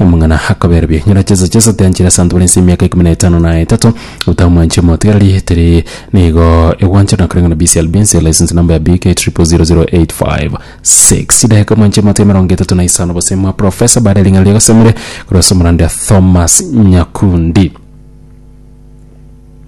Omong'ina akaberobia enyora chiaso chiaso tianchire ase abanto bare ense emiaka ikomi na etano na etato, otamwanchire motigereri, teri nigo egwancherwa na koreng'ana BCLB ense license number ya BK 000856. Chidaeka mwanchire motiga emerongo etato na isano bose mwa Professor baada ya ring'ana ria Gasemire korwa ase omoranda Thomas Nyakundi.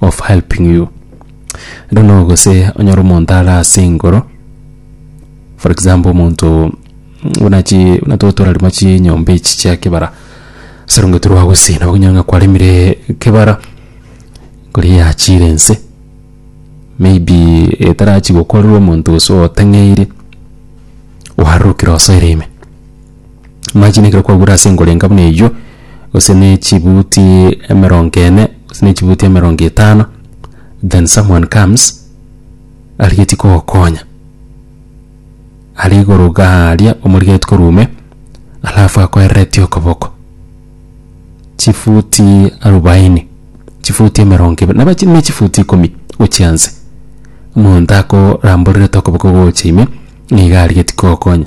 of helping you I don't know gose onyore omonto are ase igoro for example omonto buna chi buna twa torarema chinyomba echi chia kebara sarongeti rwagosina okonyora ng'a kwaremire kebara nkori yachire ense maybe etarachi gokorerwa omonto gose oteng'eire oarorokire osoire ime. Amache nekero kwagure ase engorenga buna eyio, gose na echibuti emerongo ene, gose na echibuti emerongo etano, then someone comes arigetie kogokonya are igoro iga aria omorigetie korwa ime, alafu akoereretie okoboko chifuti arubaini, chifuti emerongo ebere, naba chire na echifuti ikomi gochia inse. Omonto akoramborerete okoboko gocha ime, nigo arigetie kogokonya.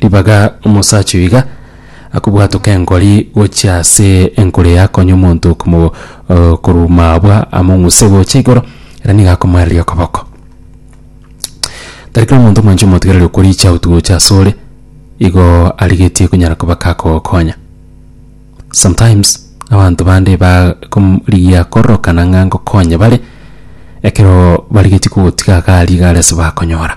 Ribaga omosacha oyo iga akobwatoka enkori gochia ase enkoro eye akonye omonto okomo eh, korwa mabwa among'use gocha igoro, ere nigo akomoereria okoboko. Tari kera omonto omwancha omotigereri okoricha out gocha asore igo arigetie konyara koba kakogokonya. Sometimes abanto bande bakorigia kororokana ng'a ngokonye bare ekero barigetie kogotiga iga aria iga are ase bakonyora.